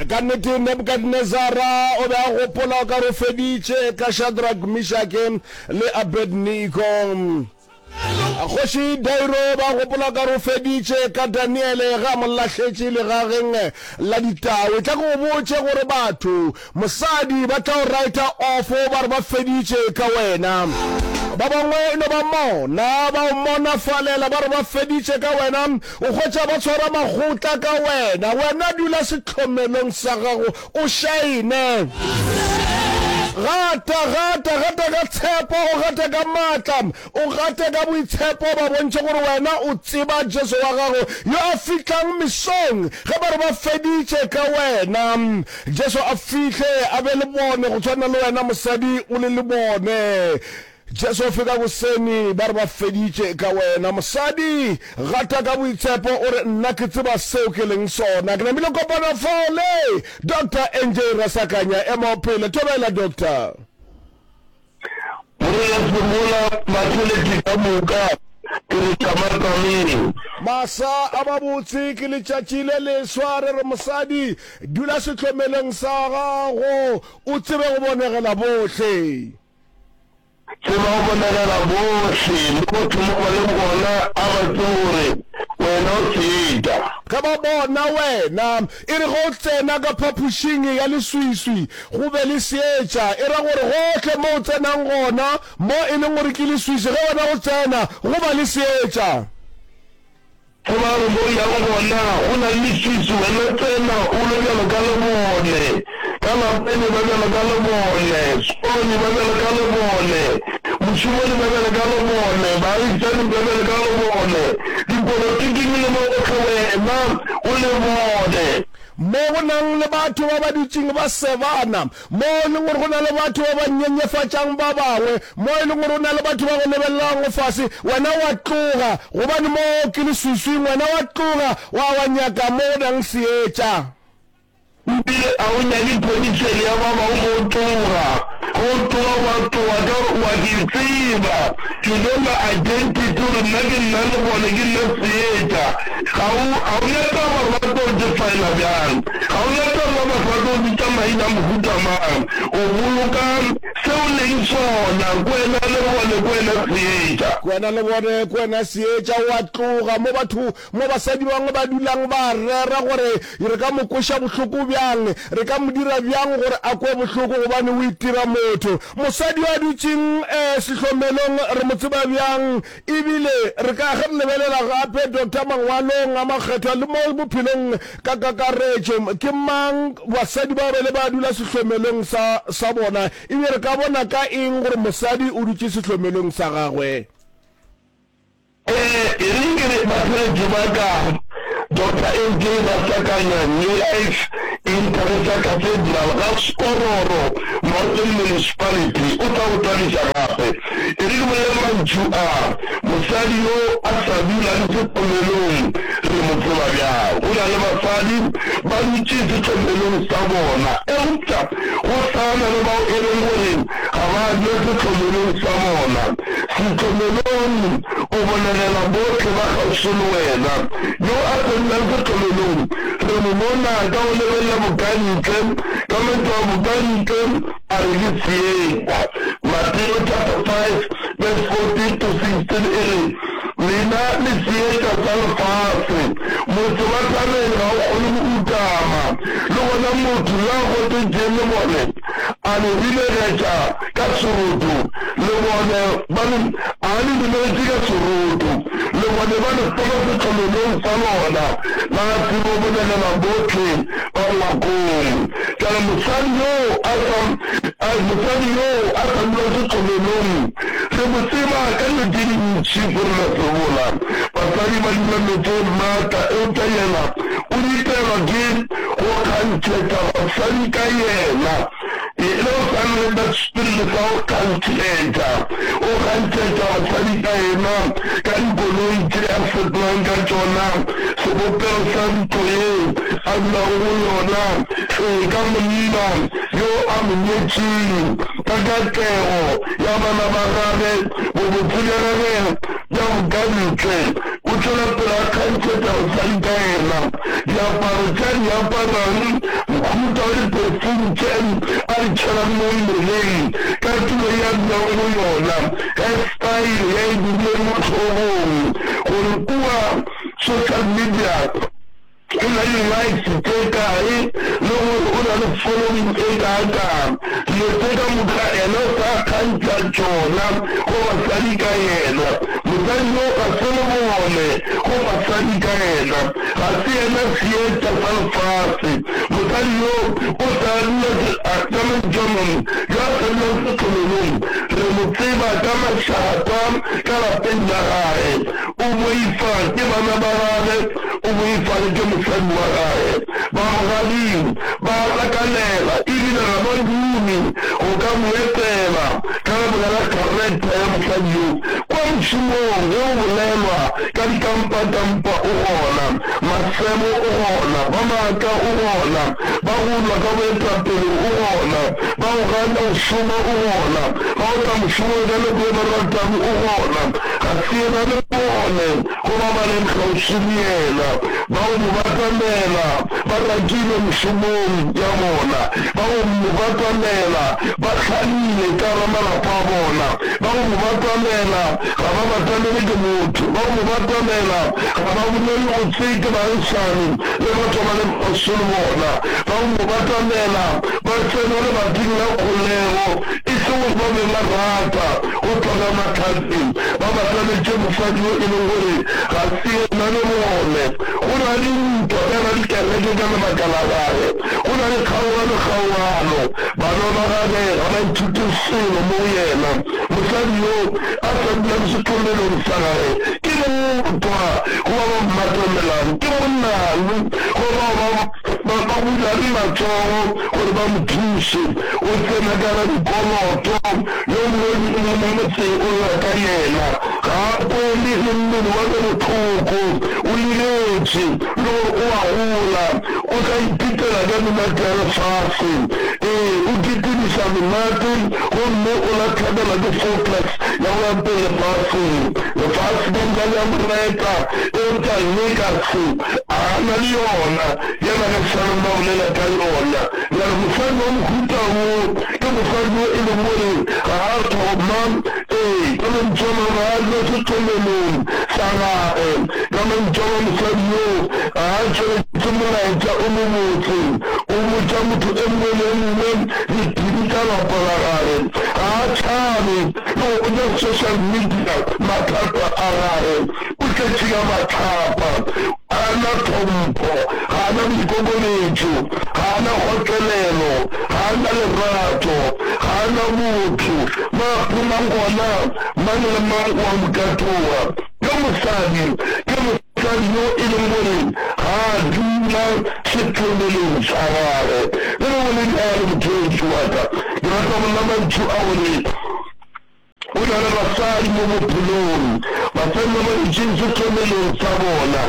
Ka nnete, Nebukadnezara o be a gopola o ka re o feditše ka Shadrak, Mishake le Abednego. Kgoši Dairo o be a gopola o ka re o feditše ka Daniele ge a mo lahletše legageng la ditau. E tla ke go botše gore batho, mosadi, ba tla o raeta ofo ba re ba feditše ka wena. Ba bangwe e no ba mona ba o monafalela ba re ba feditše ka wena. O hwetša ba tshwara makgotla ka wena. Wena dula sehlomelong sa gago, o šaene. Gata, gata, gata ka tshepo, o gate ka maatla, o gate ka boitshepo, ba bontšhe gore wena o tseba Jesu wa gago yo a fihlang mesong ge ba re ba feditše ka wena. Jesu a fihle a be le bone go tshwana le wena mosadi o le le bone. Jesu fe ka goseni ba re ba feditše ka wena. Mosadi gata ka boitshepo o re nna ke tseba seo ke leng sona. Ke namile kopana fao le Doctor NJ Rasakanya ema o phele. Thobela Doctor. Morena phemola mathelethe ka moka ke re tšamatsameng. Masa a mabotse ke letšatši le leswa re re mosadi dula sehlomelong sa gago o tsebe go bonegela bohle. Ke no bolegela bohle le motho mo ba leng gona a ba tsebe gore wena o seeta. Ge ba bona wena. E re ge o tsena ka phapošing ya leswiswi go be le seetša, e ra gore gohle mo o tsenang gona, mo e leng gore ke leswiswi, ge wena o tsena go ba le seetša. Ge ba re mo yang gona go na le leswiswi wena tsena o be bjalo ka le bone, ka lapeng e ba bjalo ka le bone, sekolong e ba bjalo ka le bone, mošomong e ba bjalo ka le bone, baagišaning ba bjalo ka le bone, dipolotiking le mo gohle wena o le bone. Mo go nang le batho ba ba dutšeng ba sebana, Mo e lego gore go na le batho ba ba nyenyefatšang ba bangwe, mo e lego gore go na le batho ba go lebelelago fase, wena wa tloga, gobane mo ke leswiswing, wena wa tloga wa wa nyaka mo go nang seetša. E bile a o nyake ponitšhele ya ba bangwe mo tloga, go tloga wa tloga ka gore o a ke tseba, ke no na identity gore nna ke nna le bone, ke nna seetša. Ga o, ga o na taba gore ba tlo defiler bjang. Ga o na taba batho ba tlo bitša maina a mohuta mang, o boloka se o leng sona, ke wena le bone, ke wena seetša. Ke wena le bone, ke wena seetša. O a tloga mo batho, mo basadi ba bangwe ba dulang ba rera gore re ka mo kweša bohloko bjang, re ka mo dira bjang gore a kwe bohloko gobane o itira motho. Mosadi yo a dutšeng sehlomelong re mo tseba bjang? E bile re ka ge re lebelela gape Doctor Mangwalong a Makgethwa le mo bophelong ka kakaretšo, ke mang basadi bao ba ile ba dula sehlomelong sa, sa bona, e bile re ka bona ka eng gore mosadi o dutše sehlomelong sa gagwe? Ee, e re ke re ba pheletše ba ka Doctor AJ Masakanya, Life Interesa Cathedral ga Skororo Northern Municipality o tla go thabiša gape. E re ke bolele mantšu a, mosadi yo a sa dula le sehlomelong re mo tseba bjang? Go na le basadi ba dutše sehlomelong sa bona eupša go sa na le bao e leng gore ga ba je sehlomolong sa bona. Sehlomolong o bolegela bohle ba kgauswi le wena. Yo a se nnang sehlomolong re mo bona ka go lebelela bokantle, ka mantšu a bokantle a re ke seeta. Mateo chapter 5 verse 14 to 16 e re, Lena le seeta sa lefase. Motse wa thabeng ga o kgone go utama, le gona motho yo a gotetšeng lebone a le ribegetša ka seroto, le bone ba le, a le ribegetše ka seroto, le bone ba le fela setlololong sa lona la tsebo go nyakela bohle ba ngwakong. Ka re, Mosadi yo a sa, a, mosadi yo a sa dula setlololong, re mo tseba ka dilo tše dintši go rena sebola. Basadi ba dula meetseng maatla, eupša yena o ritelwa ke. go kgantšhetša basadi ka yena, e le go swana le ka sepiriti sa go kgantšhetša, go kgantšhetša basadi ka yena ka dikoloi tše a fetolang ka tšona sebopego sa ntlo yeo a dulago go yona, ee, ka monna yo a mo nyetšego, ka katlego ya bana ba gagwe, bobotse bja gagwe bja bokantle. O tšwela pele a kgantšha taba tša nka yena, diaparo tša di aparang, mohuta wa diperfume tše a di tšhelang mo mmeleng, katulo ye a dulago go yona, hairstyle ye a e dirilego mo hlogong, gore kua social media. O na le likes tše kae le gore o na le following e kaakang? Dilo tše ka moka ena o sa kgantšha tšona go basadi ka yena. Mosadi yo ga se lebone go basadi ka yena. Ga se yena seetša sa lefase. Mosadi yo o sa dula ke Benjamin yo a sa dulang sehlololong. Re mo tseba ka mašata ka lapeng la gage. O boifa ke bana ba gage. O boifale ke mosadi wa gage. Ba mogading ba a hlakanela e bile ga ba dume go ka mo etela ka lebaka la kharektha ya mosadi yo. Kwa mošomong ge go bolelwa ka dikampakampa o gona, masemo o gona, ba maaka o gona, ba go lwa ka boetapele o gona, ba go gana go šoma o gona, ba go tla mošomong ka nako ye ba ratago o gona, ga se yena le bone. Go ba ba leng kgauswi le yena, bao mo batamela ba rakilwe mešomong ya bona, bao mo batamela ba hlalile ka gare malapa a bona, bao mo batamela ga ba batamele ke motho, bao mo batamela ga ba bolele gotsee ke baagisani le batho ba ba leng kgauswi le bona, bao mo batamela ba tsena lebating la kgolego E sego ba be ba rata go tloga mahlatse ba ba tlaletše mosadi yo e lego gore ga se yena le bone. Go na le ntwa ka ga dikereke ka lebaka la gagwe. Go na le kgaogano kgaogano. Bana ba gagwe ga ba ithute selo mo go yena. Mosadi yo a sa dulang setlhomelong sa gagwe ke motwa, goba ba mmatamelang ke monang, goba bao ba ba ba bulage matsogo gore ba mo thuše, o tsena ka ga dikoloto, yo mongwe le yo mongwe mo motseng o lla ka yena, ga a kwele le mmele wa ka bohloko, o liletše, le gore o a gola, o tla ipitela ka menate ya lefase, ee, o kitimiša menate, gomme o la hlabela ke focus ya go ya pele lefaseng, lefase le ntša le a mo reta, eupša nna e ka se. A na le yona, ya na le seo ba bolela ka yona. Bjale, mosadi wa mohuta wo ke mosadi yo e lego gore ga a thoma, ee, ka mantšu a mangwe, ga a dula sethomelong sa gagwe. Ka mantšu a mangwe, mosadi yo ga a tšweletše molaetša o mobotse, o botša motho e mongwe le e mongwe diphiri tša lapa la gagwe. Ga a tšhabe le go botša social media mathata a gagwe. o tletše ka mahlapa, ga a na tlhompho, ga a na boikokobetšo, ga a na kgotlelelo, ga a na lerato, ga a na botho. Na go na gona mang le mang wa go ka tloga? Ke mosadi, ke mosadi yo e leng gore ga a dula sethemeleng sa gagwe. Le ge go le bjalo, mothoetšo wa ka, ke rata go lla mantšu a gore Go na le basadi mo bophelong ba fenna mo ditšintšhi tlomelong tsa bona.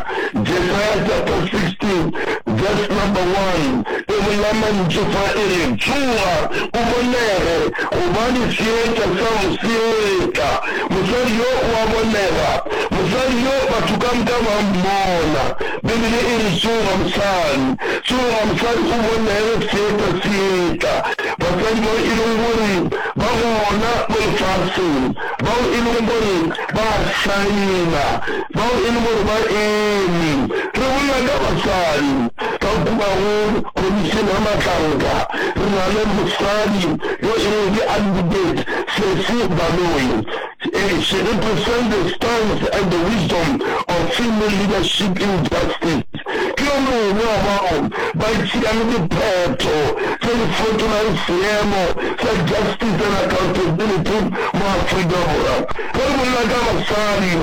Jesaya chapter 16 verse number 1 e bolela mantšu fa e re, Tsoga, o bonege, gobane seetša sa go se etla. Mosadi yo o a bonega, mosadi yo batho ka moka ba mmona. Beibele e re, Tsoga, mosadi. Tsoga, mosadi, o bonege, seetša se etla. Basadi bao e lego gore ba gona mo lefaseng, bao e lego gore ba a saena, bao e lego gore ba eme, re bolela ka basadi ba kua go Khomišene ya Matlanka, re na le mosadi yo e lego ke Advocate Sesi Baloyi, e, she represents the stance and the wisdom of female leadership in justice. ke yo mongwe wa bao ba tšeang diphetho tše di fetolang seemo sa justice and accountability mo Afrika Borwa. Ge re bolela ka basadi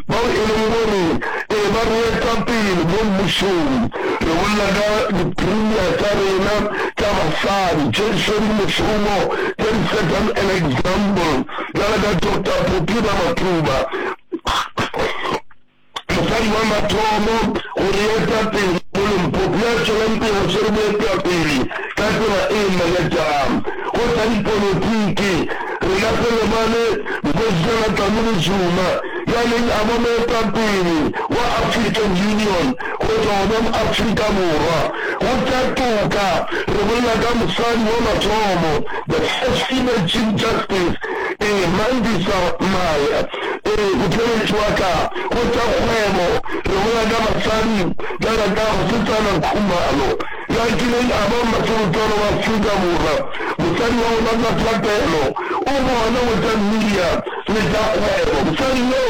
bao e leng gore e ba boetapele mo mmušong, re bolela ka di-premier tša rena tša basadi tše di swere mešomo tše di set an example bjalo ka Doctor Phuthida Mathuba. Mosadi wa mathomo go re eta pele mo Limpopo yo a tšwelang pele o swere boetapele ka tsela e makatšang. Go tša dipolotiki, rena re lebale Nkosijana Dlamini Zuma yo a neng a ba moetapele wa African Union go tšwa gona mo Afrika Borwa. Go tša toka, re bolela ka mosadi wa mathomo, the first female Chief Justice, Ee, Mandisa Maya. Ee, o theeletše wa ka go tša kgwebo. Re gola ka batswadi bjalo ka Mosetsana Khumalo, yo a kileng a ba mmaserutlwana wa Afrika Borwa. Mosadi wa rona ka thapelo o gona go tša media le tša kgwebo. Mosadi yo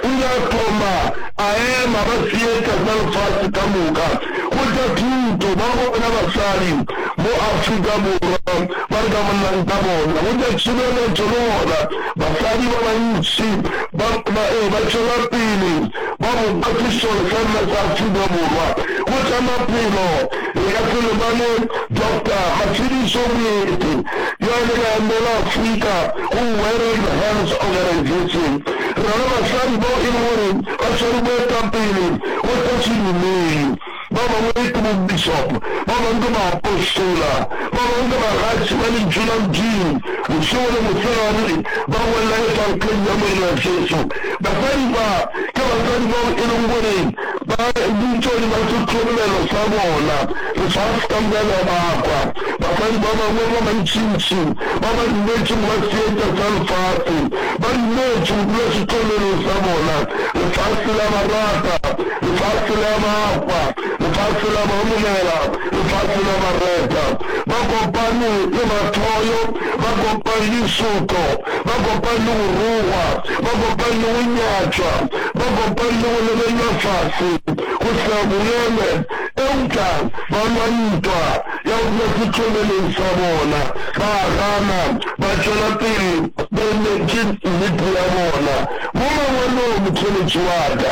o ile a thoma a ema ba seetša sa lefase ka moka go tša thuto. Ba gona basadi mo Afrika Borwa ba re ka bolelang ka bona go tša tšhireletšo le gona Basadi ba bantši ba ba e ba tšwela pele ba bopa sešole sa rena sa Afrika Borwa. Go tša maphelo re ka se lebale Doctor Matshidiso Moeti yo a ileng a emela Afrika go Wearing Hands Organization. Re na le basadi bao e lego gore ba swere boetapele go tša sedumedi. ba bangwe ke bobišopo, ba bangwe ke baapostola, ba bangwe ke bagatši ba Lentšu la Modimo bošego le mosegare, ba bolela Evankleng ya Morena Jesu. Basadi ba, ke basadi bao e lego gore ba bitšwa hodima sehlomelo sa bona. Re sa se ka llela ba kwa. Basadi ba bangwe ba bantšintši ba ba dumetšego ba seetša sa lefase, ba dumetše go dula sehlomelong sa bona. Re sa se la ba rata. Lefase la ba hwa, lefase la ba homogela, lefase la ba reta. Ba kopane le mathoyo, ba kopane le disuto, ba kopane le go rogwa, ba kopane le go nyatšwa, ba kopane le go lebelelwa fase, go sena bongeme, eupša ba lwa ntwa ya go dula setšobeleng sa bona, ba gana, ba tšwela pele ba emetse nnete ya bona. Mo mangwalong, motheeletši wa ka,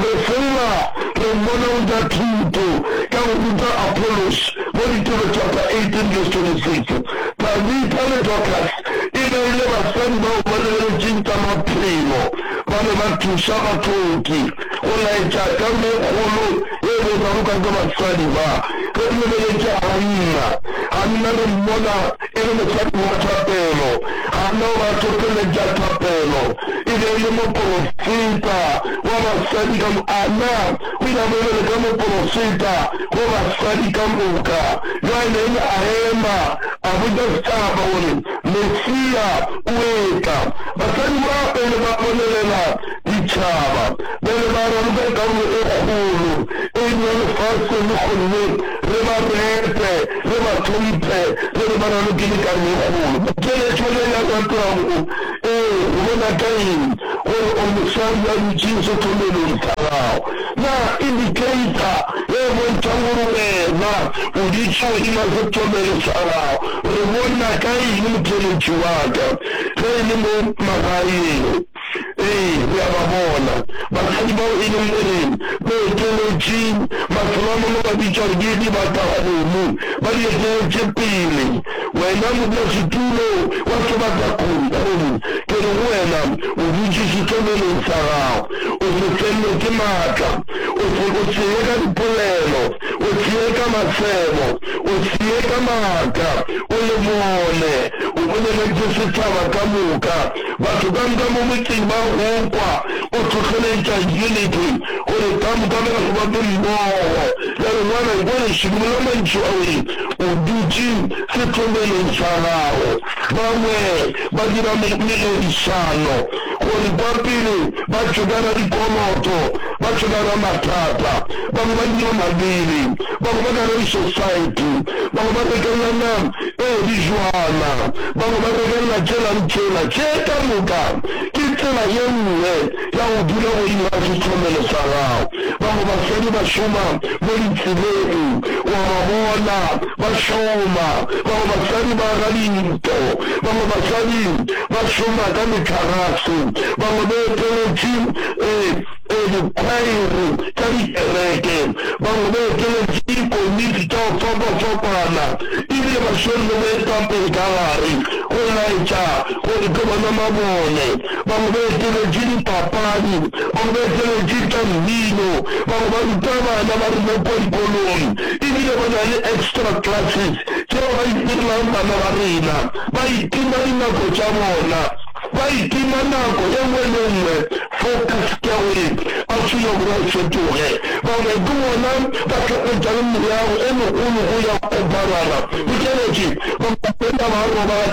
Re fola re mmona o ja thuto ka go ruta Apollos mo Ditiro chapter 18 verse 26. Tabitha le Dorcas e be e le basadi bao ba lebeletšeng tša maphelo. Ba be ba thuša bahloki go laetša karolo ye kgolo ye e bego ba rokwa ke basadi ba. Ge re lebeletše Hanna, Hanna re mmona e le mosadi wa thapelo, Hana wa hlohleletša thapelo, e be e le moporofeta wa basadi ka moka. Hana o ile a ba bjalo ka moporofeta wa basadi ka moka. Bjale Naomi a ema, a botša setšhaba gore Mesia o etla. Basadi ba pele ba bolelela ditšhaba, bjale ba raloka karolo e kgolo e nnyane lefaseng, gomme re ba repe, re ba hlomphe, re re ba na le kelekanyo e kgolo. Keletšwana ya Ratago, Ee, go bona ka eng gore o mosadi a dutše sehlomelong sa gago? Na indikeita ye e bontšha gore wena o dutše godima sehlomelo sa gago? Re bona ka eng motheletši wa ka ge e le mo magaeng? Ee, re a ba bona. Basadi bao e leng boleng, boetolotši, mastronomo ba bitšwa gore ke dibatakgomo, ba di eteletše pele. Wena modulasetulo wa sebatakgomo, ke re go wena, o dutše sehlolelong sa gago. O se fellwe ke matla. O se, o se ye ka dipolelo. O se ye ka masemo. O se ye ka maaka. O le bone. O boleletše setšhaba ka moka. Batho ka moka mo motseng ba go kwa o hlohleletša Unity gore ka moka ba gobape mmogo. Ya re, Ngwana, kua lešemong la mantšu a weng, o dutše setlomelong sa gago. Bangwe ba dira mererišano gore kwa pele ba tšokana dikoloto, ba tšokana mathata. Bangwe ba dira mabele, bangwe ba ka re sosaete, bangwe ba rekelana Ee, di bjona. Bangwe ba regelela tšela le tšela. Tše ka moka ke tsela ye nngwe ya go dula godimo ga sehlomelo sa gago. Bangwe basadi ba šoma mo ditseleng, wa ba bona ba šoma. Bangwe basadi ba aga dintlo. Bangwe basadi ba šoma ka metlagase. Bangwe ba eteletše. Ee. go dikhwaere tša dikereke, bangwe ba eteletše dikomiti tša go fapafapana e bile ba swere le boetapele ka gare go laetša gore ke bona mabone. Bangwe ba eteletše dipapadi, bangwe ba eteletše tša mmino, bangwe ba ruta bana ba rena kua dikolong e bile ba na le extra classes tšeo ba itirelang bana ba rena, ba itima dinako tša bona. Ba itima nako ye nngwe le ye nngwe fo ka sekerwi, ba tšwile gore o fetoge. Bangwe ke bona ba hlapetšang meago e megolo go ya go barara. Bokeletši, Bangwe ba feta ba robala ka